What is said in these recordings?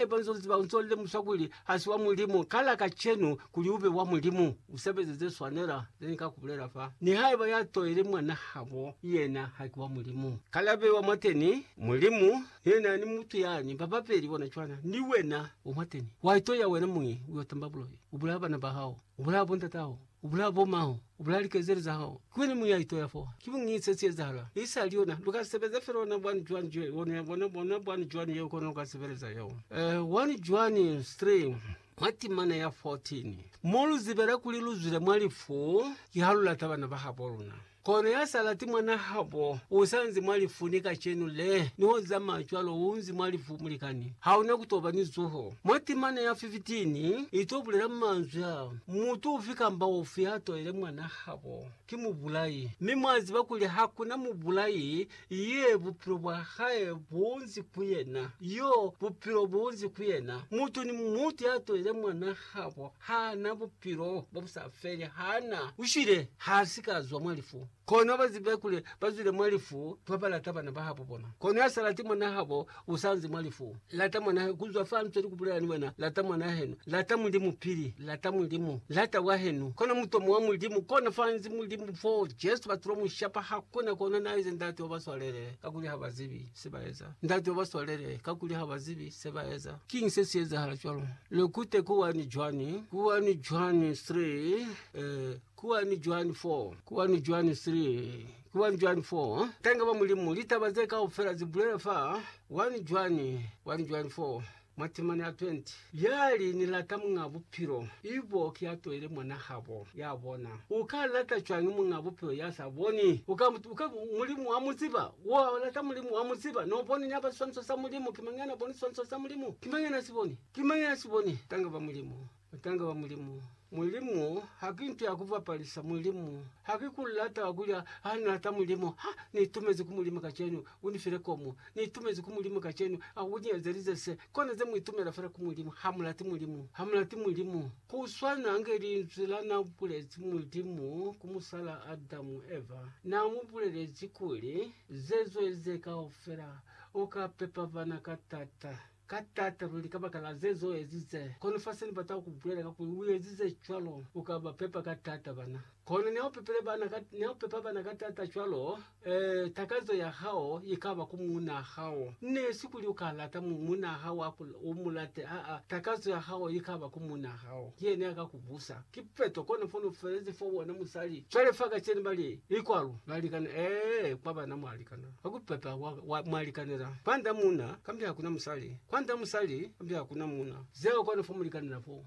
Haiba u nz'o ziba, u nz'o lemusa kuli ha si wa Mulimu, kala kacenu kuli u be wa Mulimu. U sebeze ze swanela ze ni ka ku bulela fa. Nihaiba ya toile mwan'a habo yena ha ki wa Mulimu, kala be wa mwateni. Mulimu ni yena ni mutu yani ba babeli bona cwana, ni wena u mwateni. Wa itoya wena muñi, u yo tamba bulohi, u bulaya bana ba hao, u bulaya bo ndat'aho. U bulaya bo mao, u bulaya likezeli za hao. Ki wena muya itoya fo. Ki buñi se si ezahala? I sali yona. Lu ka sebeza fela ona bwani cwani je, ona ya bona, bona bwani cwani yeo kono lu ka sebeleza yeo. Eh, 1 Juani 3, mwa timana ya 14. Mo lu zibela kuli lu zwile mwa lifu, ki ha lu lata bana ba habo luna. Kono ya sa lati mwanahabo u sa nzi mwa lifu ni kacenu le, ni ho zamaya cwalo u nzi mwa lifu, mulikani. Ha una ku to ba ni zuho. Mwa timana ya 15 i to bulela manzwi a, Mutu ufi kamba ufi ya toile mwanahabo, ki mubulai. Mi mwa ziba kuli ha ku na mubulai Ye, bupilo bwa hae bunzi ku yena. Yo, bupilo bunzi ku yena. Mutu ni mutu ya tolile mwana habo, ha na bupilo bo bu sa feli, ha na. U shwile, ha si ka zwa mwa lifu. Kono ba zibe kuli ba zwile mwa lifu ba ba lata bana ba habo bona. Kono ya sa lati mwana habo, usanzi mwa lifu. Lata mwan'a henu kuzwa fa nzweli kubulela ni wena. Lata mwan'a henu. Lata Mulimu pili. Lata Mulimu. Lata wa henu. Kona mutomo wa Mulimu. Kona fanzi Mulimu fo Jesu batulo mushapa. Hakuna kona naize Ndate wa baswalele, kakuli ha bazibi se baeza. Ndate wa baswalele, kakuli ha bazibi se baeza. Kiñi se si ezahala cwalo? Lekute kuwani Juani, kuwani Juani 3, eh, kuwani Juani 4, kuwani Juani 3. 1 Juani 4, Tanga ba Mulimu, litaba ze kaufela ze bulela fa 1 Juani 1 Juani 4, Matemane a 20 Ya li, Ni lata Muñ'a Bupilo, ibo ki ya toile mwan'a habo ya bona. U ka lata cwañi Muñ'a Bupilo ya sa boni? U ka, u ka, Mulimu wa mu ziba. Wa lata Mulimu, wa mu ziba. No boni na ba siswaniso sa Mulimu? Ki mañi ya na boni siswaniso sa Mulimu? Ki mañi ya na si boni? Ki mañi ya na si boni? Tanga ba Mulimu. Butanga bwa Mulimu. Mulimu haki nto ya kubapalisa. Mulimu haki ku lata wa kulya. Ha ni lata Mulimu. Ha ni itumezi ku Mulimu kacenu. U ni file komu. Ni itumezi ku Mulimu kacenu. A ku ni ezelize se. Kona ze mu itumela fela ku Mulimu. Ha mu lati Mulimu. Ha mu lati Mulimu. Ku swana nge linzwi la na bulezi Mulimu ku musala Adamu, Eva. Na mu bulelezi kuli, Zezo eze kaufela, u ka pepa bana ka tata. Ka taata luli kabakala ze zo ezize. Kono fa se ni bata ku bulela ka kuli u ezize cwalo, u ka ba pepa ka taata bana. Kono niha u pepile bana ka, niha u pepa bana ka taata cwalo, ee, takazo ya hao i ka ba ku muunaa hao. Ne si kuli u ka lata mu, muunaa hao a ku, u mu late, aa, takazo ya hao i ka ba ku muunaa hao. Ki yena ya ka ku busa. Ki peto. Kono fono felezi fo bona musali. Cwale fa kacenu ba li, I kwalo. Balikana, ee, kwa bana mwalikana. Kwa kupepa kwa, kwa mwa likanela, kwanda muuna, kambe hakuna musali, kwanda musali, kambe hakuna muuna. Zeo kwanu fo mu likanela fo.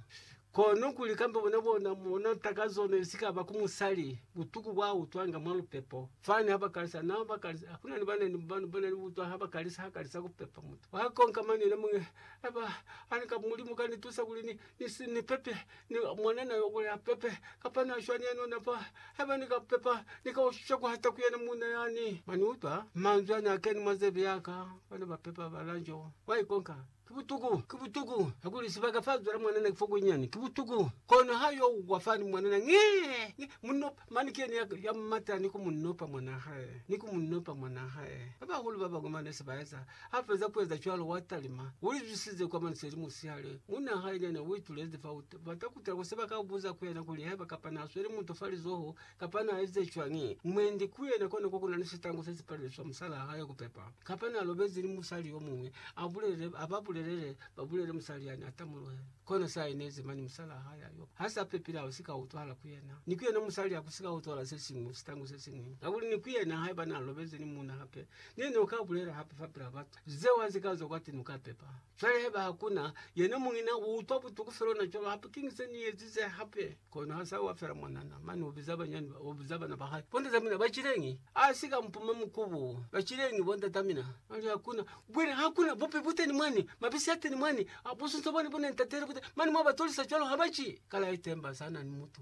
Kono kuli kambe bona, bona, bona takazo ne sikaba ku musali, butuku bwa utwanga mwa lupepo. Fani ha ba kalisa, na ba kalisa, kunani bana ni, bana, bana ni butwa ha ba kalisa, ha kalisa kupepa mutu. Wa konka mane yena muñwi, Aba, ani ka Mulimu ka ni tusa kuli ni, Isi ni pepe, ni mwana na yo boya pepe, kapa na shwani ya nona fa. Haiba ni ka pepa, ni ka ushisha ku hata ku yena munna yani. Mwa ni utwa manzwi a na keni mwa zebe ya ka, Bana ba pepa ba lanjo, ba ikonka. Ki butuku! Ki butuku! Kakuli sibaka fa zwela mwanana ki fo kunyinyani. Ki butuku! Kono ha yo wa fani, mwanana, nge! Nge! Mu nopa. Mani ki yena ya mata ni ku mu nopa mwan'a hae, ni ku mu nopa mwan'a hae. Ba bahulu ba bañwi ba ne se ba eza Ha feza ku eza cwalo, wa talima. U li zwisize kwa manzwi a li musihale. Munna hae ni yena u itulezi fa u bata ku tala ku se ba ka buza ku yena kuli haiba kapa na sweli mutu fa lizoho kapa na ezize cwañi. Mwendi ku yena kona kwa ku na ni sitangu se si palelezi fa musalaa hae ku pepa. Kapa na lobezi ni musali yo muñwi, a bulele, a ba bulelele ba bulele musali yani a tamuluhe. Kono se a inezi mani musalaa hae ya yo ha sa pepile ha si ka utwahala ku yena. Ni ku yena musali ha ku si ka utwahala se siñwi, sitangu se siñwi. Kakuli ni ku yena haiba na lobezi ni muuna hape, Ne ni ka bulela hape fapila batu zeo ha zika zwa kwati nuka pepa. Cwale haiba hakuna, yena muñi na utwa butuku fela ona cwalo hape. Kiñi se ni ezize hape? Kono ha sa wa fela mwanana, mane ubiza banyani ba, ubiza bana ba hae, Bondata mina, ba cileñi? A si ka mpuma mukubu, Ba cileñi bondata mina? Mane hakuna, bwile hakuna bupi buteni mwani, mabisi ateni mwani, a busunso bwani bune ntatele buteni, mane mwa ba tolisa cwalo ha ba ci. Kale aitemba sa na ni mutu.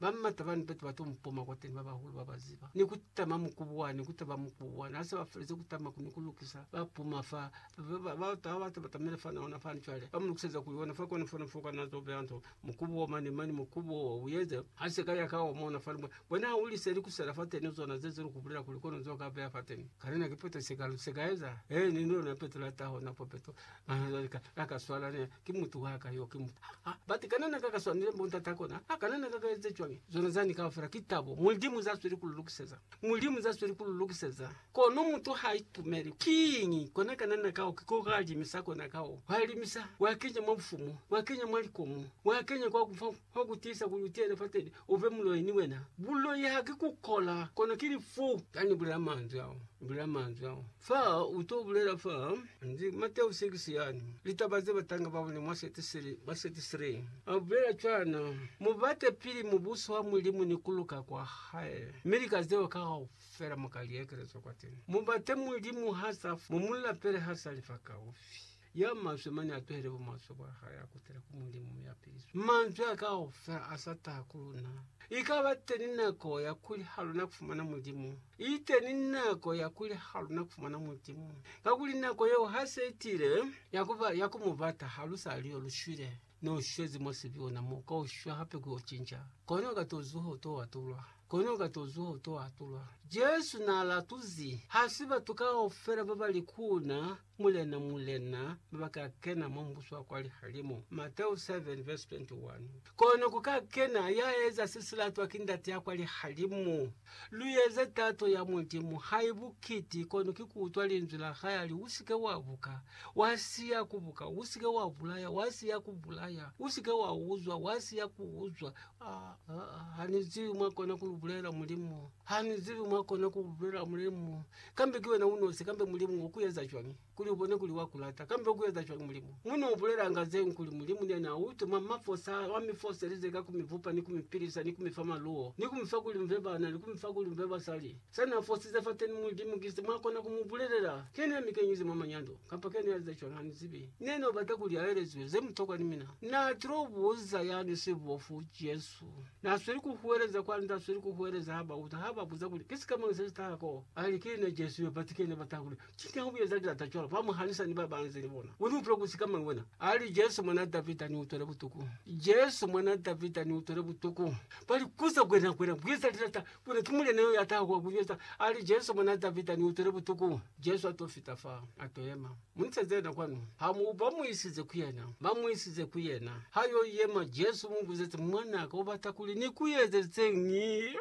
Ba m'ata bani batu ba to mpoma kwateni ba bahulu ba ba ziba, ni ku tama mukubuwani, ku taba mukubuwani. Ha se ba felezi ku tama ni ku lukisa, ba puma fa. Ba batu ha ba tabatamile fa na ona fani cwale, ba mu lukiseza ku yona fa, kona fo na fo kana zo beya nto, mukubu wo mane mane, mukubu wo wa uyeze. Ha se ka ya ka omona fani, bona, bona u lise ni ku sela fateni zona ze ze luku bulela kuli kono zo ka beya fateni. Kana na ki peto se ka, se ka eza? He, ni lona peto la taho, na po peto. Mahazali ka, ha ka swala ne, ki mutu wa ka yo, ki mutu. Ha, ha, but kana na ka ka swanile mbo ntate ako na? Ha kana na ka ka eze cwañi? Zona zani kaufela ki tabo Mulimu za sweli ku lu lukiseza. Mulimu za sweli ku lu lukiseza. Kono mutu ha itumeli, kiñi? Kona kana na ka o, ki koga limisa kona ka o. Wa limisa, wa kenya mwa bufumu, wa kenya mwa likomo, wa kenya kwa ku fa, fa ku tiisa kuli u tiyele fateni. Uve muloi ni wena. Buloi haki kukola, kono ki lifu. Ka ni bulela manzwi ao, ni bulela manzwi ao. Fa u to bulela fa, ndi Mateo 6 yani, litaba ze batanga ba bone mwa seti sili, mwa seti 3. A bulela cwana, Mu bate pili Mubuso wa Mulimu ni ku luka kwa Hae, mi lika zeo kaufela mu ka li ekelezwa kwateni. Mu bate Mulimu ha sa fa, mu mu lapele ha sa li fakaufi. Ya maswe mane a tuhele bumaswe bwa hae a kutele ku Mulimu mi a piliswe. Manzwi a kaufela a sa taha ku luna. I ka ba teni nako ya kuli ha luna ku fumana Mulimu. I teni nako ya kuli ha luna ku fumana Mulimu. Kakuli nako yeo ha se i tile, ya ku ba, ya ku Mu bata ha lu sa li yo lu shwile. Ne u shwezi mwa sibiuna mo, ka u shwa hape ku yo cinca. Kone u ka to zuha u to atulwa. Kone u ka to zuha u to atulwa. Jesu na latuzi, ha si batu kaufela ba ba li ku Na, Mulena, Mulena, baba ka kena mwa Mubuso wa kwa lihalimu. Mateu 7 vesi 21 Kono ku ka kena ya eza se si latwa ki Ndate ya kwa lihalimu. Lu eze tato ya Mulimu, hai bukiti, kono ki ku utwa Linzwi la hae a li, U si ke wa buka, wa siya ku buka, u si ke wa bulaya, wa siya ku bulaya, u si ke wa uzwa, wa siya ku uzwa. Ah, ah, ah, ha ni zibi mwa kona ku lu bulela, Mulimu. Ha ni zibi mwa kona ku lu bulela, Mulimu. Kambe ki wena unosi kambe Mulimu o ku eza cwañi kuli u bone kuli wa ku lata? Kambe u ku eza cwañi Mulimu? Mu n'o bulelanga zeñwi kuli Mulimu ni yena a u tuma mwa fosa wa mi foselize ka ku mi bupa ni ku mi pilisa ni ku mi fa maluwo ni ku mi fa kuli mu be bana ni ku mi fa kuli mu be basali. Sa n'a fosize fateni Mulimu ki se mwa kona ku mu bulelela. Kene ya mi kenyize mwa manyando, kamba kene ya eza cwañi ha ni zibi. Ne n'o bata kuli a elezwe ze mutokwa ni mina. N'a til'o buza ya ni sibofu, Jesu. Jesu n'a sweli ku huweleza kwa n'a sweli ku huweleza ha ba uta, ha ba buza kuli, Ki sikamañi se si taha k'o? A li, Ki ne Jesu yo. Batu ki ne ba taha kuli, Ki nyaha ku eza lilata cwalo? Ba mu hanisa ni ba ba nze ni bona. U ni utwela ku sikamañi wena? A li, Jesu Mwan'a Davida, ni utwele butuku! Jesu Mwan'a Davida, ni utwele butuku! Ba li, Kuza ku yena, ku yena ku eza lilata, ku yena ki Mulena yo ya taha kwa ku yo eza. A li, Jesu Mwan'a Davida, ni utwele butuku! Jesu a t'o fita fa, a t'o yema. Mu iseze yena kwanu. Ha mu ba mu isize ku yena, ba mu isize ku yena. Ha yo yema, Jesu mu buzezi, Mwana ka, u bata kuli ni ku ezelizeñi?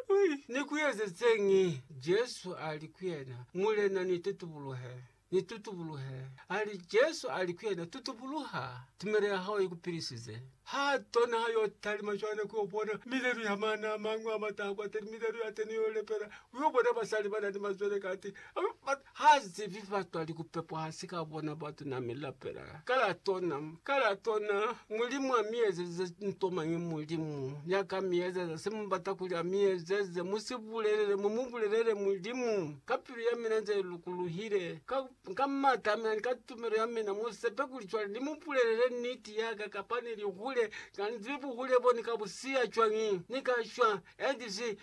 Ni ku ezelizeñi? Jesu a li ku yena, Mulena, ni tutubuluhe, ni tutubuluhe. A li, Jesu a li ku yena, Tutubuluha, tumelo ya hao i ku pilisize. Ha tona ha yo talima cwale ku yo bona milelu ya mana a mañwi a mata ha kwateni, milelu ya teni yo lepela, u yo bona basali ba na ni mazwele kati, ba, Ha zibi batwali kupepwa hasi ka bona batuna mi lapela ka la tona ka la tona mulimu a mi ezeze nto mañi mulimu ya ka mi ezeza se mu bata kuli a mi ezeze mu si bulelele mu mu bulelele mulimu ka pilu ya mina nze lukuluhile ka ka mata a mina ni ka tumelo ya mina mu sepe kuli cwale ni mu bulelele niti ya ka kapa ni li hule ka ni zibi buhule bo ni ka bu siya cwañi ni ka shwa and zi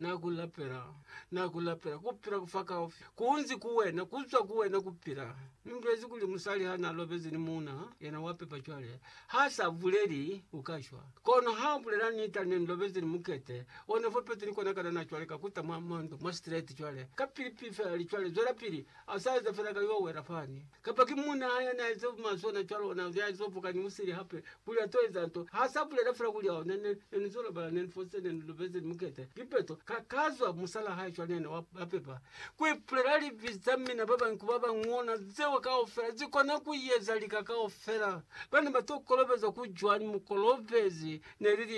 Na ku lapela, na ku lapela, kupila kufa kaufi kunzi ku wena, kuzwa ku wena kupila. Ni mulezi kuli musali ha na lobezi ni muuna, yena wa pepa cwale. Ha sa buleli, u ka shwa. Kono ha u bulela nita, ne ni lobezi ni mukete, ona fo peti ni kona kanana cwale ka kuta mwa, mwa ndu, mwa straight cwale. Kapili pili fela li cwale, zwelapili. A sa eza fela ka yo wela fani. Kapa ki muuna hae yani a eza buma sona cwalo ona ya zo vuka ni musili hape kuli a to eza nto. Ha sa bulela fela kuli, Oh, ne, ne, ne ni zo lobala, ne ni fositse, ne ni lubeze, ni mukete. Kipeto. Ka, ka zwa musala hae cwale yani wa, wa pepa. Ku ipulela libi za mina ba bañwi ku ba bañwi ona zeo kaufela zi kona ku yeza lika kaufela. Bana ba to kolobezwa ku cwani? Mukolobezi ne li lina.